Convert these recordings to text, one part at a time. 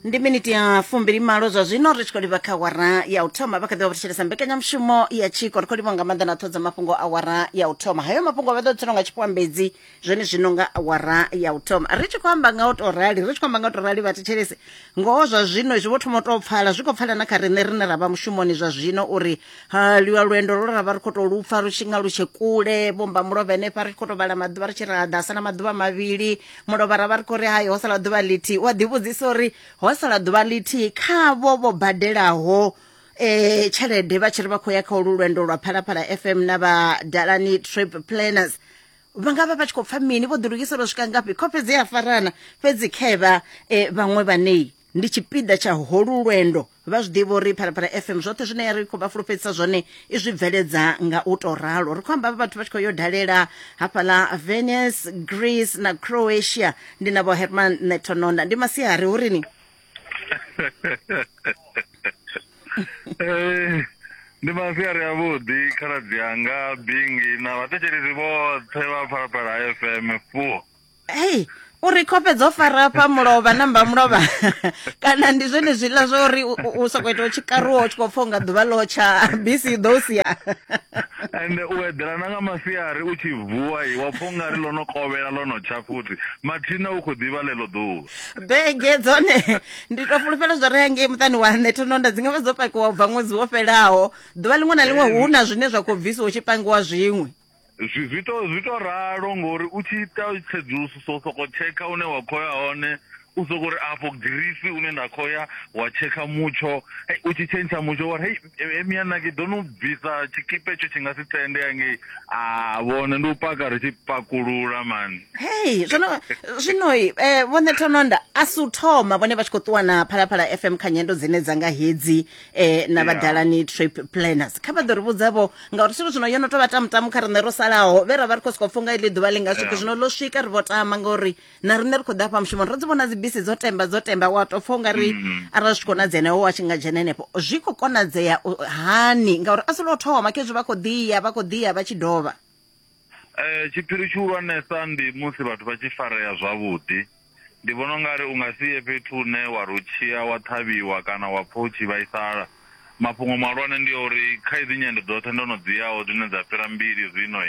ndi miniti ya fumbili malo zwa zwino ri tshi khou livha kha awara ya u thoma vha kha ḓi vha vhathetshelesa mbekanyamushumo ya tshiko ri khou livha nga maanḓa na ṱhodza mafhungo a awara ya u thoma hayo mafhungo vha ḓo tshelwa nga tshifhambedzi zwone zwino nga awara ya u thoma ri tshi khou amba nga u tou rali ri tshi khou amba nga u tou rali vhathetshelesi ngoho zwa zwino zwi vho thoma u tou pfala zwi khou pfala na kha riṋe rine ra vha mushumoni zwa zwino uri ha lwa lwendo lwo ra vha ri khou tou lupfa lu tshi nga lu tshe kule vhomba mulovha henefha ri tshi khou tou vhala maḓuvha ri tshi ra ḓasa na maḓuvha mavhili mulovharavha ri khou ri hai ho sala ḓuvha ḽithihi u a ḓivhudzisa uri ho sala ḓuvha ḽithihi khavho vho badelaho eh tshelede vha tshi ri vha khou ya kha ulu lwendo lwa phalaphala fm na vha dalani trip planners vha nga vha vha tshi khou pfa mini vho ḓilugisela u swika ngafhi khofhe dzi a farana fhedzi khevha um eh, vhaṅwe vhanei ndi tshipiḓa tsha holu lwendo vha zwi ḓivha uri phalaphala fm zwoṱhe zwine ri khou vha fulufhedzisa zwone i zwi bveledza nga u tou ralo ri khou amba vhathu vha tshi khou yo dalela hafhaḽa venice greece na croatia ndi na vho herman netononda ndi masiari hu rini eh, ndi masiari avhuḓi khaladzi anga bingi na vhathetshelesi vhoṱhe vha phalaphala fm fuo hey uri khofhe dzo fara fha mulovha namba mulovha kana ndi zwone zwiḽa zwa uri u sokou ita u tshi karuwa u tshi khou pfa unga ḓuvha ḽo tsha bisi i ḓo u sia ende u eḓela na nga masiari u tshi vuwa i wa pfa ungari ḽo no kovhela ḽo no tsha futhi mathina u khou ḓivha ḽeḽo ḓuvha bege dzone ndi tou fulufhela zwo ri hangei muṱani wa nṋe thononda dzi nga vha dzo pakiwa u bva ṅwedzi wo fhelaho ḓuvha ḽiṅwe na ḽiṅwe hu na zwine zwa khou bvisiwa u tshi pangiwa zwiṅwe zwi zwi to zwi to ralo ngori u tshi ita tsedzuluso so soko tshekha une wa khoya hone u soko ri afho girisi une nda khoya wa tshekha mutsho hey, u tshi tshentsha mutsho wa hey emia na ke do no bvisa tshikipe tsho tshi nga si tende yange a vhone ndi u paka ri tshi pakulula man hey zwino zwino eh vhone thononda a si u thoma vhone vha tshi kho ṱuwa na phalaphala fm kha nyendo dzine dza nga hedzi eh na vhadalani trip planners kha vha ḓo ri vhudzavho ngauri zwithu zwino yo no tou vha tamutamu kha riṋe ro salaho vhe ra vha ri khou sokou pfha unga iḽi ḓuvha ḽi nga swike zwino ḽo swika ri vho tama ngauri na riṋe ri khou ḓa fha mushumoni ro dzi vhona dzibisi dzo temba dzo temba wa tou pfha unga ri mm-hmm. arali zwi tshi konadzea na iwe wa tshi nga dzhena henefho zwi khou konadzea hani ngauri a si lwo thoma khezwi vha khou ḓiya vha khou ḓiya vha tshi dovha Tshiphiri tshihulwanesa ndi musi vhathu vha tshi farea zwavhuḓi. Ndi vhona u nga ri u nga si ye fhethu hune wa ri u tshi ya wa ṱhavhiwa kana wa pfha u tshi vhaisala. Mafhungo mahulwane ndi a uri kha hedzi nyendo dzoṱhe ndo no dzi yaho dzine dza fhira mbili zwino,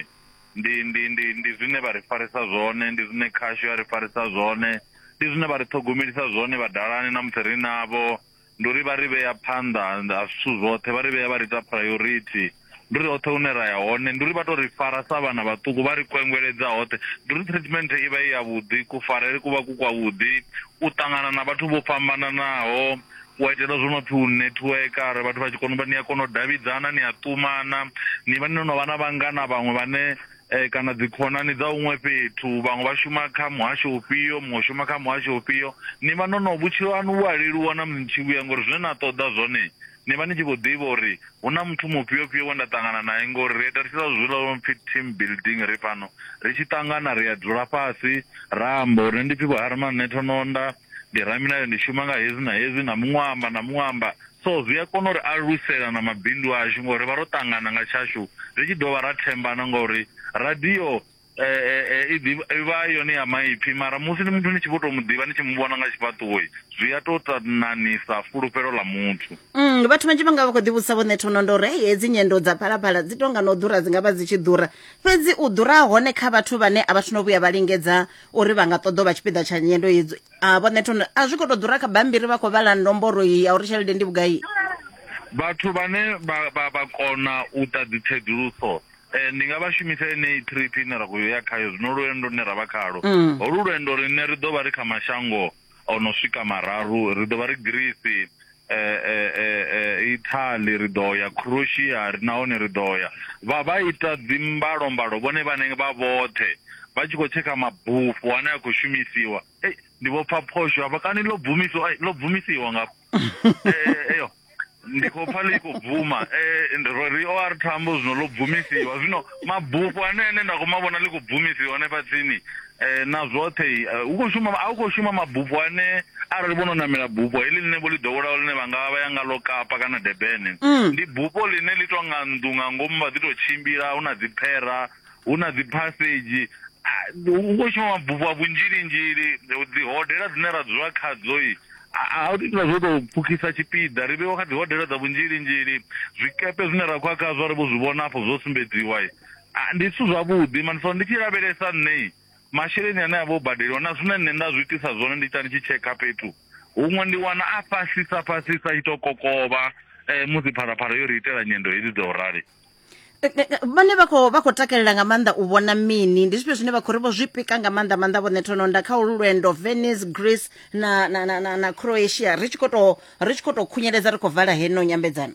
ndi ndi ndi ndi zwine vha ri farisa zwone, ndi zwine khasho ya ri farisa zwone, ndi zwine vha ri ṱhogomelisa zwone vhadalani na musi ri navho. ndi uri vha ri vhea phanḓa ha zwithu zwoṱhe vha ri vhea vha ri ita priority ndi uri hoṱhe hune ra ya hone ndi uri vha to ri fara sa vhana vhaṱuku vha ri kwengweledza hoṱhe ndi uri treatment i vha i ya vhuḓi kufarele ku vha ku kwa vhuḓi u ṱangana na vhathu vho fhambananaho wa itela zwo no pfhi u network are vhathu vha tshi kona u vha ni a kona u davhidzana ni a ṱumana ni vha ni no vha na vhangana vhaṅwe vhane eh, kana dzikhonani dza huṅwe fhethu vhaṅwe vha shuma kha muhasho ufhio muṅwe shuma kha muhasho ufhio ni vha no no vhutshilo haṋu vhu a leluwa na mutshi vhuya ngori zwine na ṱoḓa zwone ni vha ni tshi khou ḓivha uri hu na muthu mufhio fhio we nda ṱangana naye ngori ri ita tshila zwila lwo pfhi team building ri fhano ri tshi ṱangana ri a dzula fhasi ra amba uri ndi pfhi vho harman nṋe thononda ndi ramilayo ndi shuma nga hezi na hezi na muṅwe amba na muṅwe amba So zwi a kona u ri alusela na mabindu ashu ngori ri vha ro ṱangana nga tshashu ri tshi dovha ra thembana ngori radio i ḓivha yone ya maipfi mara musi ni muthu ni tshi vho tou mu ḓivha ni tshi mu vhona nga tshifhaṱuwo zwi a tou ta nanisa fulufhelo ḽa muthu Mm, vhathu vhanzhi vha nga vha khou ḓivhudzisa vhoṋe thono ndo uri hei hedzi nyendo dza phalaphala dzi tonga na u ḓura dzi nga vha dzi tshi ḓura fhedzi u ḓura hone kha vhathu vhane a vha thu no vhuya vha lingedza uri vha nga ṱoḓa u vha tshipiḓa tsha nyendo hedzo a vho nṋe thono a zwi khou tou ḓura kha bambiri vha khou vhala nomboro iyi ya uri tshelede ndi vhugai vhathu vhane vha vha vha kona u ta dzi tsedzuluso eh, ndi nga vha shumisa enei trip ine ra khou ya khayo zwino lwendo lune ra vha khalo Mm. holu lwendo rine ri ḓo vha ri kha mashango o no swika mararu ri ḓo vha ri greece Italy ri ḓo ya Croatia ri nahone ri ḓo ya vha vha ita dzi mbalo mbalo vhone vhane vha vhoṱhe vha tshi khou tshekha mabufho ane a khou shumisiwa ei ndi vho pfa phosho hafha kani ḽo bvumisiwa ai ḽo bvumisiwa nga eyo ndi khou pfa ḽi khou bvuma ro ri o ari thambo zwino ḽo bvumisiwa zwino mabufho ane ane nda khou ma vhona ḽi khou bvumisiwa hanefha tsini Eh, na zwoṱhe eh, u khou shuma a u khou shuma mabufho ane arali vho no namela bufho heḽi ḽine vho ḽi ḓowelaho ḽine vha nga vha ya nga ḽo kapa kana debene mm. ndi bufho ḽine ḽi tou nga nnḓu nga ngomu vha ḓi tou tshimbila hu na dziphera hu na dziphasedzhi ah, u khou shuma mabufho a vhunzhilinzhili dzi hodela dzine ra dzula khadzo i a u ita zwo tou pfukisa tshipiḓa ri vheiwa kha dzi hodela dza vhunzhilinzhili zwikepe zwine ra khou a khazwo ri vho zwi vhona afho zwo sumbedziwa Ah, ndi zwithu zwavhuḓi mani so ndi tshi lavhelesa nṋe masheleni ane a vha o badeliwa na zwine nṋe nda zwi itisa zwone ndi ita ndi tshi tshekha fhethu huṅwe ndi wana a fhasisa fhasisa i to kokovha um musi pharaphala yo ri itela nyendo hedzi dza u rali Eh, eh, eh, vhane vha khou vha khou takalela nga maanḓa u vhona mini ndi zwifhio zwine vha khou ri vho zwi pika nga maanḓa maanḓa vhone thononda kha ulu lwendo venice greece na, na, na, na, na croatia ri tshi khou tou- ri tshi khou tou khunyeledza ri khou vala heno nyambedzano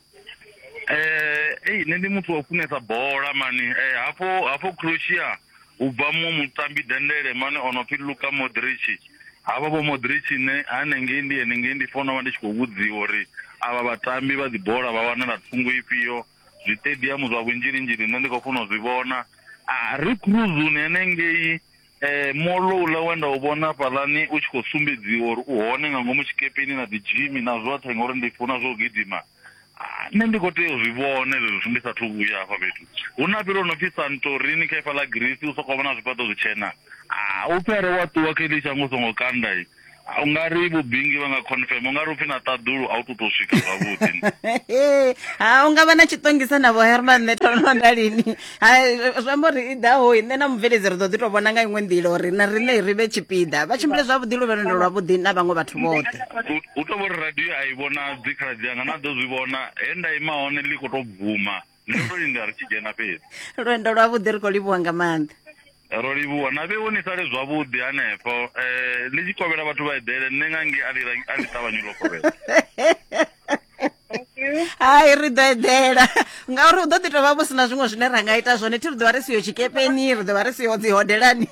eh ei nṋe ndi muthu wa u funesa bola mani eh hafho hafho Croatia u bva muṅwe mutambi dendele mani o no pfi Luka Modric havha vho Modric nṋe hanengei ndi henengei ndi fona vha ndi tshi khou vhudziwa uri avha vhatambi vha dzi bola vha wanala thungo ifhio zwiṱediamu zwa vhunzhilinzhili nṋe ndi khou funa u zwi vhona a ri cruzuni henengei Eh, molo uḽa we nda u vhona hafhaḽani u tshi khou sumbedziwa uri u hone nga ngomu tshikepeni na dzijimi na zwoṱhe ngauri ndi funa zwo gidima Ah, nṋe ndi khou tea u zwi vhona hezwi zwithu ndi sathu vhuya hafha fhethu hu na fhethu ho no pfi santorini kha ifa ḽa greece u sokou vhona zwifhaṱo zwitshena Ah, u pfi are wa ṱuwa kha iḽi shango u songo kanda i u nga ri vhubingi vha nga confirm u nga ri upfi na ṱaḓulu a u tu tou swika zwavhuḓi ha u nga vha na tshiṱongisa navho herman nṋe thono nda lini zwi amba uri i ḓaho nṋe na mubveledzi ri ḓo ḓi tou vhona nga iṅwe nḓila uri na riṋe ri vhe tshipiḓa vha tshimbile zwavhuḓi luvhelendo lwavhuḓi na vhaṅwe vhathu vhoṱhe u tou vhori radio a i vhonadzi khaladzi anga na ḓo zwi vhona he nda ima hone ḽi khou tou bvuma nṋe ndo linda ri tshi dzhena fhedzi lwendo lwavhuḓi ri khou livhuwa nga maanḓa ro livhuwa na vheo ni sale zwavhuḓi hanefho um ni tshi kovhela vhathu vha eḓele nṋe nga nge a ḽi ra- a ḽi ṱavhanyi ḽo kovhela hai ri ḓo eḓela ngauri hu ḓo ḓi tovha vho si na zwiṅwe zwine ra nga ita zwone thi ri ḓovha ri siyo tshikepeni ri ḓovha ri siyo dzi hodelani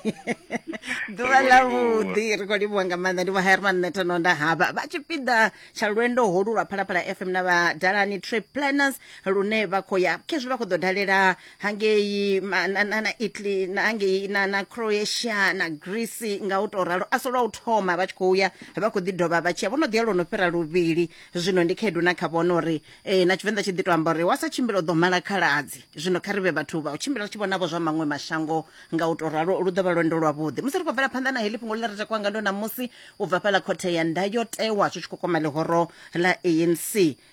ḓuvha Ri khou livhuwa. ḽavhuḓi ri khou livhuwa nga maanḓa ndi vho herman netono nda haba vha tshipiḓa tsha lwendo holu lwa phalaphala fm na vhadalani trip planners lune vha khou ya khezwi vha khou ḓo dalela hangei ma- na, na, na italy na hangei na, na croatia na greece nga u tou ralo a si lwa u thoma vha tshi khou ya vha khou ḓi dovha vha tshiya vho no ḓi ya lwo no fhira luvhili zwino ndi khaedu na kha vhona uri eh, na tshivenḓa tshi ḓi to amba uri wa sa tshimbila u ḓo mala khaladzi zwino kha ri vhe vhathu vha u tshimbila ri tshi vhonavho zwa maṅwe mashango nga u tou ralo lu ḓo vha lwendo lwavhuḓi musi ri khou bvela phanḓa na heḽi fhungo ḽi re takwa nga ndo ṋamusi u bva fhaḽa khothe ya ndayotewa zwi tshi khou kwama ḽihoro ḽa anc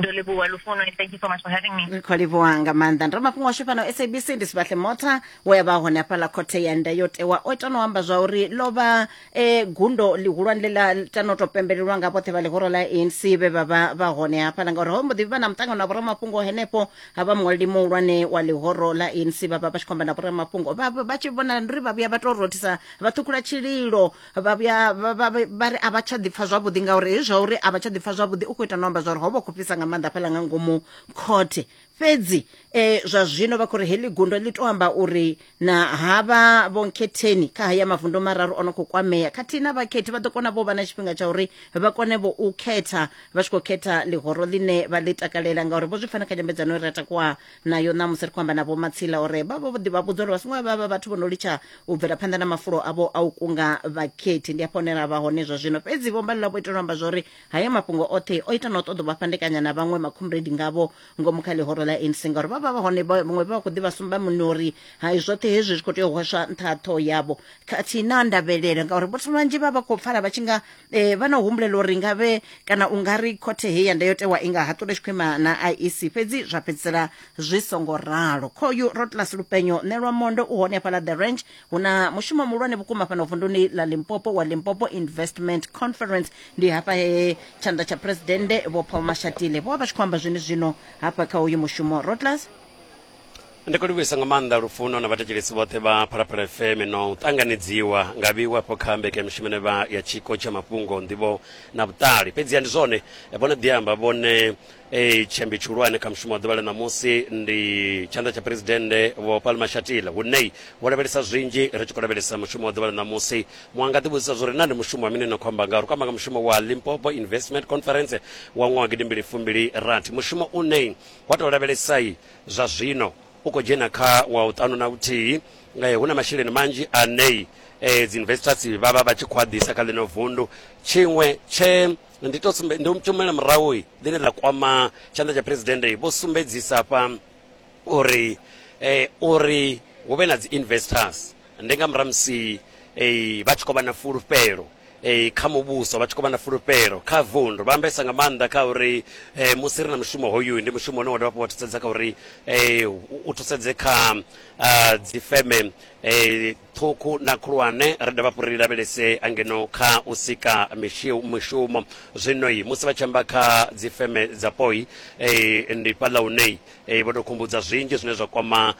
ndo livhuwa lufuno and thank you so much for having me ri khou livhuwa nga maanḓa ndi ramafhungo washu fhano sabc ndi sibahle mota we a vha hone hafhaḽa khothe ya ndayotewa o ita no amba zwa uri lo vha eh, gundo ḽihulwane ḽe ḽa ita no to pembelelwa nga vhoṱhe vha ḽihoro ḽa anc vhe vha vha vha hone hafhaḽa ngauri ho mbo ḓi vha na muṱangano na vhoramafhungo henefho ha vha muṅwaleli muhulwane wa ḽihoro ḽa anc vha vha vha tshi khou amba na vhoramafhungo vha vha- vha tshi vhonala ndi uri vha vhuya vha to rothisa vha ṱhukhula tshililo vha vhuya vha- vha- vha- vha ri a vha tsha ḓipfa zwavhuḓi ngauri hezwi zwa uri a vha tsha ḓipfa zwavhuḓi u khou ita no amba zwa uri ho vha khou fhisa nga maanḓa fhaḽa nga ngomu khothe fhedzi um zwa zwino vha khou ri heḽi gundo ḽi tou amba uri na havha vhonkhetheni kha haya mavundu mararu o no khou kwamea khathihi na vhakhethi vha ḓo kona vho vha na tshifhinga tsha uri vha kone vho u khetha vha tshi khou khetha ḽihoro ḽine vha ḽi takalela ngauri vho zwi fana kha nyambedzano i re takuwa nayo ṋamusi ri khou amba na vho matsila uri vha vho ḓi vha vhudza uri vha songo vha vha vhathu vho no litsha u bvela phanḓa na mafulo avho a u kunga vhakhethi ndi afho hune ra vha hone zwa zwino fhedzi vho mbalula vho itela u amba zwa uri haya mafhungo oṱhe o ita na u ṱoḓa u vha fhandekanya na vhaṅwe makhumbredi ngavho ngomu kha ḽihoro ḽa anc ngauri vha vha vha hone vha- vhaṅwe vha vha khou ḓi vha sumba muni uri hai zwoṱhe hezwi zwi khou tea u hweswa nṱha ha ṱhoho yavho khathihi na ndavhelelo ngauri vhathu vhanzhi vha vha khou pfala vha tshi nga eh, vha na u humbulela uri nga vhe kana u nga ri khothe heyi ya ndayotewa i nga haṱula tshikhwima na iec fhedzi zwa fhedzisela zwi songo ralo khoyu rotlas lupenyo nelwa mondo u hone hafhaḽa the ranch hu na mushumo muhulwane vhukuma fhano vunduni ḽa limpopo wa limpopo investment conference ndi hafha he tshanḓa tsha phuresidennde vho paul mashatile vho vha vha tshi khou amba zwene zwino hafha kha uyu mushumo rotlas Ndi khou livhuisa nga maanḓa lufuno na vhathetshelesi vhoṱhe vha Phalaphala FM no ṱanganedziwa nga vhiwo afho kha mbekanyamushumo ine vha ya tshiko tsha mafhungo nḓivho na vhuṱali. Fhedziha ndi zwone eh, vho no ḓi amba vhone eh, tshiambi tshihulwane kha mushumo wa ḓuvha ḽa ṋamusi ndi tshanḓa tsha phuresidennde Vho Paul Mashatile hune vho lavhelesa zwinzhi ri tshi khou lavhelesa mushumo wa ḓuvha ḽa ṋamusi. Muṅwe a nga ḓi vhudzisa zwo ri na ndi mushumo wa mini na khou amba nga ri khou amba nga mushumo wa Limpopo Investment Conference wa ṅwaha gidimbili fumbili rathi mushumo une wa tou lavhelesai Zwa zwino u khou dzhena kha wa u ṱanu na vhuthihi. Hu na masheleni manzhi ane dziinvestors vha vha vha tshi khou a ḓisa kha ḽino vundu. Tshiṅwe tshe ndi to sumbe, ndi tshi humela murahu ḽine ḽa kwama tshanḓa tsha phuresidennde vho sumbedzisa hafha uri uri hu vhe na dziinvestors, ndi nga murahu musi eh, vha tshi khou vha na fulufhelo eh, kha muvhuso vha tshi khou vha na fulufhelo kha vundu vha ambesa nga maanḓa kha uri eh, musi ri na mushumo hoyu ndi mushumo une wa dovha hafhu wa thusedza kha uri eh, u- u thusedze kha ah, dzifeme eh, ṱhukhu na khulwane ri dovha hafhu ri lavhelese angeno kha u sika mishi- mishumo zwino yi musi vha tshi amba kha dzifeme dzapo yi eh, ndi fhaḽa hune eh, vho tou khumbudza zwinzhi zwine zwa kwama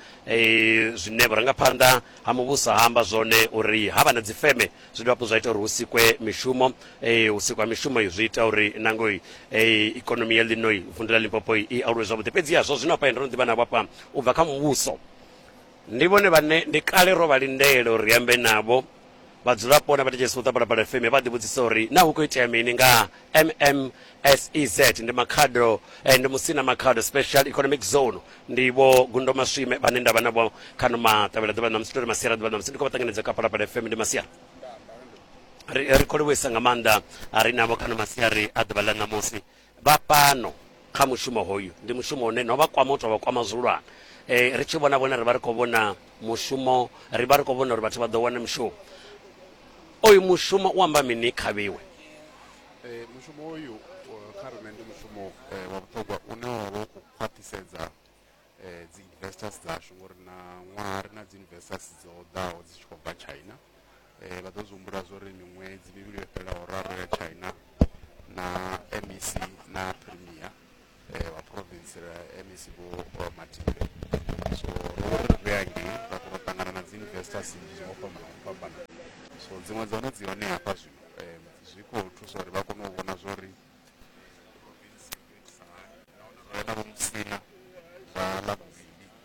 Zwine vhurangaphanḓa ha muvhuso ha amba zwone uri ha vha na dzifeme zwi dovha hafhu zwa ita uri hu sikwe mishumo. U sikwa ha mishumo zwi ita uri na ngo ikonomi ya ḽino vunḓu ḽa Limpopo i aluwe zwavhuḓi. Fhedziha zwa zwino hafha ndo no ḓi vha navho hafha u bva kha muvhuso, ndi vhone vhane ndi kale ro vha lindela uri ri ambe navho Vhadzulapo na vhathetshelesi vho ṱwa Phalaphala FM vha ḓivhudzisa uri naa hu khou itea mini nga MMSEZ ndi makhado eh, ndi musina makhado special economic zone ndi vho Gundo Maswime vhane nda vha navho kha no maṱavhela ḓuvha ṋamusi tori masiara ḓuvha ṋamusi ndi khou vha ṱanganedza kha Phalaphala FM ndi masiara ri ri khou livhuisa nga maanḓa a ri navho kha no masiari a ḓuvha ḽa ṋamusi vha fhano kha mushumo hoyu ndi mushumo une no vha kwama u tou vha kwama zwihulwane eh, ri tshi vhona vhone ri vha ri khou vhona mushumo ri vha ri khou vhona uri vhathu vha ḓo wana mushumo oyu mushumo u amba mini kha vhiwe Eh, mushumo uyu eh, kha riṋe ndi mushumo eh, wa vhuṱhogwa une wa vha u khou khwaṱhisedza eh, dzi investors dzashu ngori na ṅwaha ri na dzi investors dzo ḓaho dzi tshi khou bva china eh, vha ḓo zwi humbula zwo ri miṅwedzi mivhili yo fhelelaho raru ya china na mec na premier eh, wa province ra mec vho eh, matile so ro ri ri angei ra kona u ṱangana na dzi investors nnzhi ngo fhambana ngo fhambana so dziṅwe dza hone dzi hone hafha zwino eh, zwi khou thusa uri vha kone u vhona zwo ri province i khou itisa hani nahone ro ya na vho musina vha ḽa vhuvhili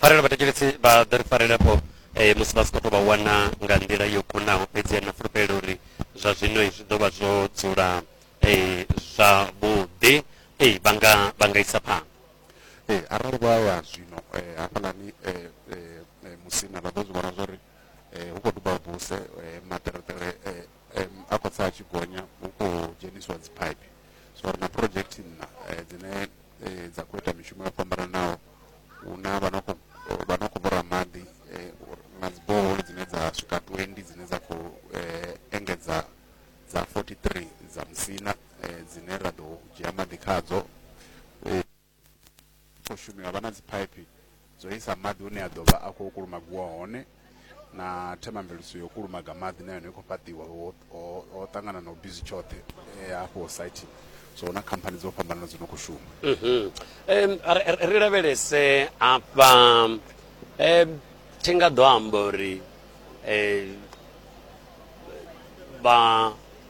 pfanelo vhathetshelesi vha ḓo ri farela fho eh, musi vha si khou tou vha wana nga nḓila yo kunaho fhedzi na fulufhelo uri zwa zwino eh, zwi ḓo vha zwo dzula eh, zwavhuḓi eh, vha nga vha nga isa phanḓa Eh, arali vha ya zwino eh, hafhaḽani eh, eh, eh, musina vha ḓo zwi vhona zwa uri eh, hu khou duba buse eh, maṱereṱere eh, eh, a khou tsa a tshi gonya hu khou dzhenisiwa dzipaipi so ri na project nna eh, dzine eh, dza khou ita mishumo yo fhambananaho hu na vha no khou vha no khou vhora maḓi eh, na dziboholi dzine dza swika 20 dzine dza khou eh, engedza dza 43 dza musina eh, dzine ra ḓo dzhia maḓi khadzo khou shumiwa vha na dziphaiphi dzo isa maḓi hune a ḓo vha a khou kulumagiwa hone na themamveledziso yo kulumaga maḓi na yone i khou fhaṱiwa ho ṱangana na u bizi tshoṱhe eh, hafho site so na khamphani dzo fhambanana dzo no khou shuma mhm. ri lavhelese afha thi nga ḓo amba uri eh, vha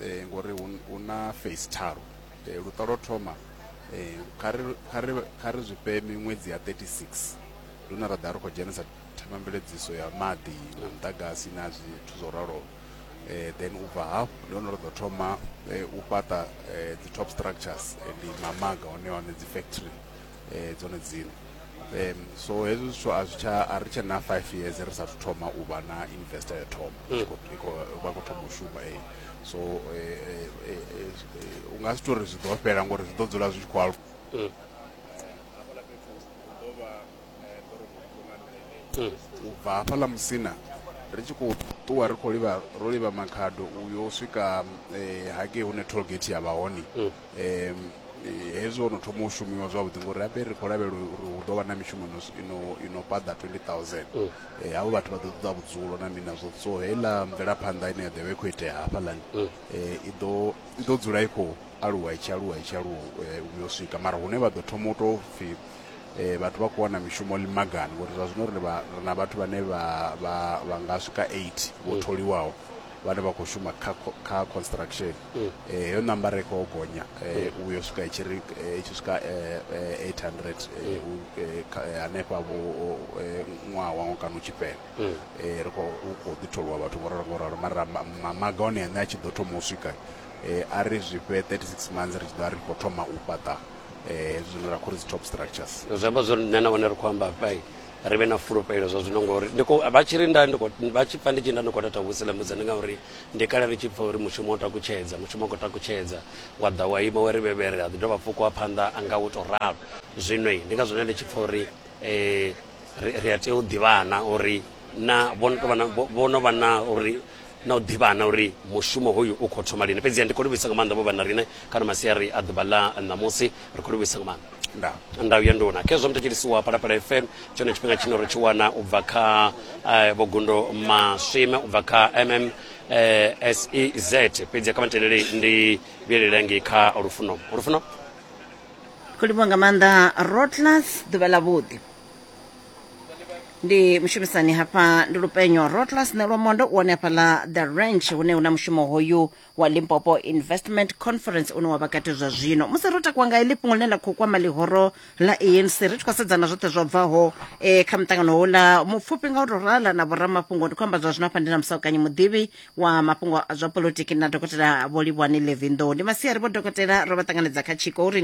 eh, ngori hu na face tharu eh, luṱa lwo thoma eh, kha ri zwi fhe miṅwedzi ya 36 ndi hune ra ḓa ri khou dzhenisa themamveledziso ya maḓi na muḓagasi na zwithu zwo raloho eh, then u bva hafhu ndi hone ri ḓo thoma eh, u fhaṱa eh, dzi-top structures eh, ndi mamaga hone hone dzi-factory eh, dzone dzine um so hezwi zwithu a zwi tsha a ri tshe na five years ri sathu thoma u vha na investor ya thoma Mm. Tshi khou- i khou- vha khou thoma u shuma eh. so eh, eh, eh, eh, eh, u nga si tou ri zwi ḓo fhela ngori zwi ḓo dzula zwi tshi khou aluwa Mm. Mm. u bva hafhaḽa musina ri tshi khou ṱuwa ri khou livha ro livha makhado uyo swika eh, hagei hune tollgate ya vha hone Mm. hezwi ho no thoma u shumiwa zwavhuḓi ngori rabe ri khou lavhelela uri hu ḓo vha na mishumo ino ino paḓa 20000 mm. eh, havho vhathu vha ḓo ṱoḓa vhudzulo na mini nazwo so heiḽa mvelaphanḓa ine ya ḓo vha i khou itea hafhaḽani mm. eh, i ḓo i ḓo dzula i khou aluwa i tshi aluwa i tshi aluwa eh, u yo swika mara hune vha ḓo thoma u tou pfhi eh, vhathu vha khou wana mishumo limagani ngori zwa zwino ri na vhathu vhane vha nga swika 8 vho mm. tholiwaho vhane vha khou shuma kha construction heyo nambara i khou gonya u yo swika i tshi ri i tshi swika 800 hanefha vho ṅwaha waṅwe kana u tshi fhela ri khou khou ḓi tholiwa vhathu vho ralo ngo ralo mara mamaga one ane a tshi ḓo thoma u swika a ri zwi fhe 36 months ri tshi ḓo ri khou thoma u fhaṱa hezwi zwine ra khou ri dzi top structures zwi amba zwori nṋe na hone ri khou amba hafha ri vhe na fulufhelo zwa zwino ngori vha tshi ri nda vha tshi pfa ndi tshi nda ndi khou tata vhusilamudza ndi ngauri ndi kale ri tshi pfa uri mushumo o takutshedza mushumo o khou takutshedza wa ḓa wa ima wa ri vhevhere a ḓi dovha fukiwa phanḓa a nga u tou ralo zwino ndi nga zwone ndi tshi pfa uri um ri a tea u ḓivhana uri na vho no vha na uri na u ḓivhana uri mushumo hoyu u khou thoma lini. Fhedziha ndi khou livhuisa nga maanḓa vho vha na riṋe kana masiari a ḓuvha ḽa ṋamusi. Ri khou livhuisa nga maanḓa. Nda. Ndau ya nduna. Khezwo muthetshelisi wa Phalaphala FM, tshone tshifhinga tshine ro tshi wana u bva kha eh, Vho Gundo Maswime, u bva kha MM eh, SEZ. Fhedziha kha matendele ndi vhuyelele ngei kha Lufuno. Lufuno? Khou livhuwa nga maanḓa Rotlas, ḓuvha ḽa vhuḓi. ndi mushumisani hafha ndi lupenyo rotlas nelwamondo u wane hafha ḽa the ranch hune una mushumo hoyu wa limpopo investment conference une wa vha kati zwa zwino musi ro takuwa nga iḽi fhungo ḽine ḽa khou kwama ḽihoro ḽa anc ri tshi khou sedzana zwoṱhe zwo bvaho eh, kha muṱangano houḽa mupfufhi nga u tou rala na vhoramafhungo ndi khou amba zwa zwino hafha ndi na musaukanyi muḓivhi wa mafhungo a zwa polotiki na dokotela vho livhwani levinḓou ndi masiari vho dokotela ro vha ṱanganedza kha tshiko uri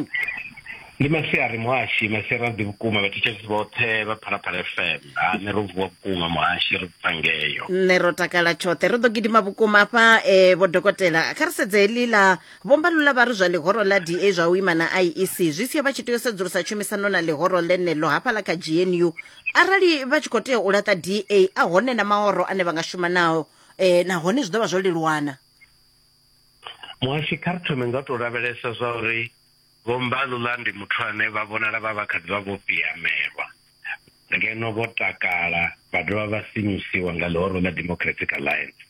ndi masiari muhashi masiari aḓi vhukuma vhathetshelisi vhoṱhe vha phalaphala fm ha nṋe ro vuwa vhukuma muhashi ri bva ngeyo nṋe ro takala tshoṱhe ri ḓo gidima vhukuma hafha um vho dokotela kha ri sedze heḽi ḽa vhombalula vha ri zwa ḽihoro ḽa da zwa u ima na iec zwi sia vha tshi tea u sedzulusa tshumisano na ḽihoro ḽeneḽo hafhaḽa kha gnu arali vha tshi khou tea u laṱa da a hone na mahoro ane vha nga shuma nao um nahone zwi ḓo vha zwo leluwana muhashi kha ri thome nga u tou lavhelesa zwa uri vho mbalula ndi muthu ane vha vhonala vha vha kha ḓi vha vho piamelwa ngeno vho takala vha dovha vha sinyusiwa nga ḽihoro ḽa democratic alliance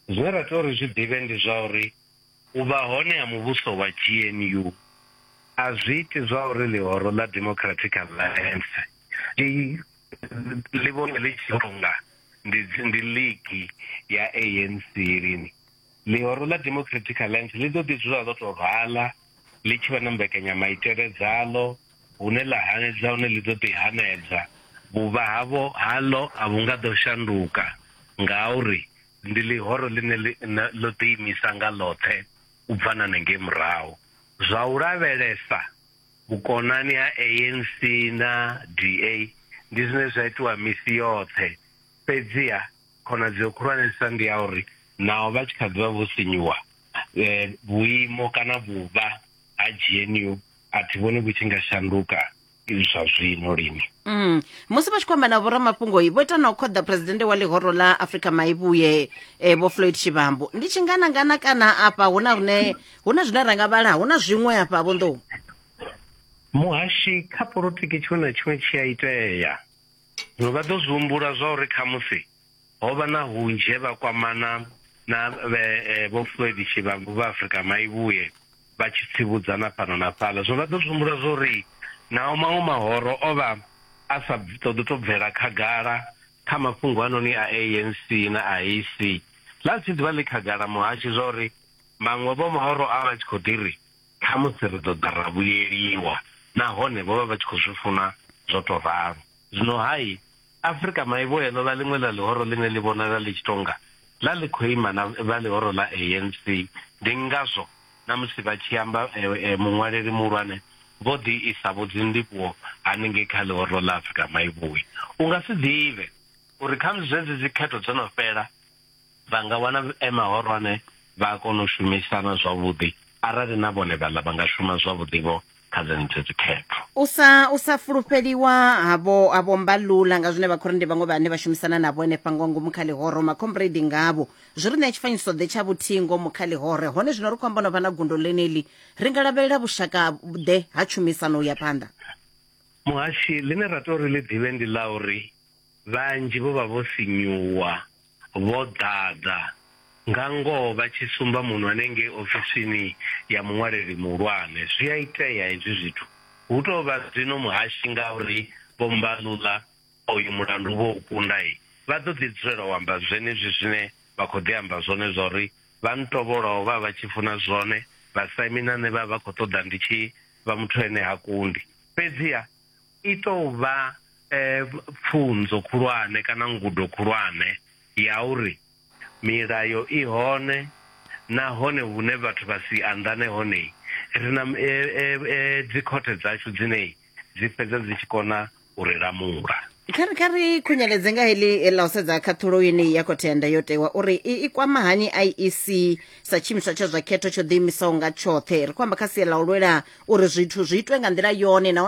zwine ra tea uri zwi ḓivhe ndi zwa uri u vha hone ha muvhuso wa gnu a zwi iti zwa uri ḽihoro ḽa democratic alliance i ḽi vhone ḽi tshi tonga ndi ndi ligi ya ANC lini ḽihoro ḽa democratic alliance ḽi ḓo ḓi dzula ḽo tou rwala ḽi tshi vha na mbekanyamaitele dzaḽo hune ḽa hanedza hune ḽi ḓo ḓi hanedza vhuvha havho haḽo a vhu nga ḓo shanduka ngauri ndi ḽihoro ḽine ḽo ḓiimisa nga ḽoṱhe u bva na nengei murahu zwa u lavhelesa vhukonani ha ANC na DA ndi zwine zwa itiwa misi yoṱhe fhedziha khonadzeo khulwanesa ndi ya uri naho vha tshi kha ḓivha vho sinyuwa eh, vhuimo kana vhuvha ha GNU a thi vhoni vhu tshi nga shanduka zwa zwino lini Mm. musi vha tshi khou amba na vhoramafhungo vho ita na u khoḓa phuresidennde wa ḽihoro ḽa afrika maivhuye eh, vho floyd tshivhambo ndi tshinganangana kana afha hu na rine hu na zwine ra nga vhala hu na zwiṅwe hafha vhonḓou muhashi kha politiki tshiṅwe na tshiṅwe tshi a itea zwino vha ḓo zwi humbula zwa uri khamusi ho vha na hunzhe vha kwamana na eh, vho floyd tshivhambu vha afrika maivhuye vha tshi tsivhudzana fhano na fhaḽa zwino vha ḓo zwi humbula zwa uri naho maṅwe mahoro o vha a sa ṱoḓi to bvela khagala kha mafhungo anoni a anc na a ac ḽa si ḓivha ḽi khagala muhashi zwa uri Vhaṅwe vho vha vho rwa vha tshi khou ḓi ri, Khamusi ri ḓo ḓa ra vhuyeliwa. Nahone vho vha vha tshi khou zwi funa zwo tou ralo. Zwino-hai, Afrika Maivhuya ḽo vha ḽiṅwe ḽa ḽihoro ḽine ḽi vhonala ḽi tshi tou nga ḽa ḽi khou ima na vha ḽihoro ḽa ANC. Ndi ngazwo na musi vha tshi amba, muṅwaleli muhulwane vho ḓi isa vho dzindivhuwo hanengei kha ḽihoro ḽa Afrika Maivhuya. U nga si ḓivhe uri khamusi zwezwi dzikhetho dzo no fhela, Vha nga wana e mahorwane vha a kona u shumisana zwavhuḓi arali na vhone vhaḽa vha nga shuma zwavhuḓi-vho kha dzenedzi dzikhetho. U sa u sa fulufheliwa ha vho ha vho Mbalula nga zwine Vhakhorinte vhaṅwe vhane vha shumisana navho henefha nga ngomu kha ḽihoro, makhombredi ngavho, zwi ri ṋea tshifanyiso-ḓe tsha vhuthihi ngomu kha ḽihore. Hone zwino ri khou amba no vha na gundo ḽeneḽi, ri nga lavhelela vhushaka-ḓe ha tshumisano u ya phanḓa? Muhashi, ḽine ra tea uri ḽi ḓivhe ndi ḽa uri vhanzhi vho vha vho sinyuwa. vho ḓadza, nga ngoho vha tshi sumba munwe ngei ofisini ya muṅwaleli muhulwane. Zwi a itea hezwi zwithu. Hu tou vha zwino muhashi ngauri Vho Mbalula oyu mulandu vho u kunda, vha ḓo ḓi dzulela u amba zwenezwi zwine vha khou ḓi amba zwone zwa uri vha ntovholaho vha vha vha tshi funa zwone, vhasaimi na nṋe vha vha vha khou ṱoḓa ndi tshi vha muthu ane ha kundi. Fhedziha. i tou vha pfunzo khulwane kana ngudo khulwane ya uri milayo i hone nahone hune vhathu vha si anḓane hone ri na dzikhothe dzashu dzine dzi fhedza dzi tshi kona u ri lamula. Kha ri kha ri khunyeledze nga heḽi ḽa u sedza khaṱhulo yeneyi ya khothe ya ndayotewa uri i, i kwama hani IEC sa tshiimiswa tsha zwa khetho tsho ḓiimisaho nga tshoṱhe ri khou amba kha sia ḽa u lwela uri zwithu zwi itwe nga nḓila yone nahone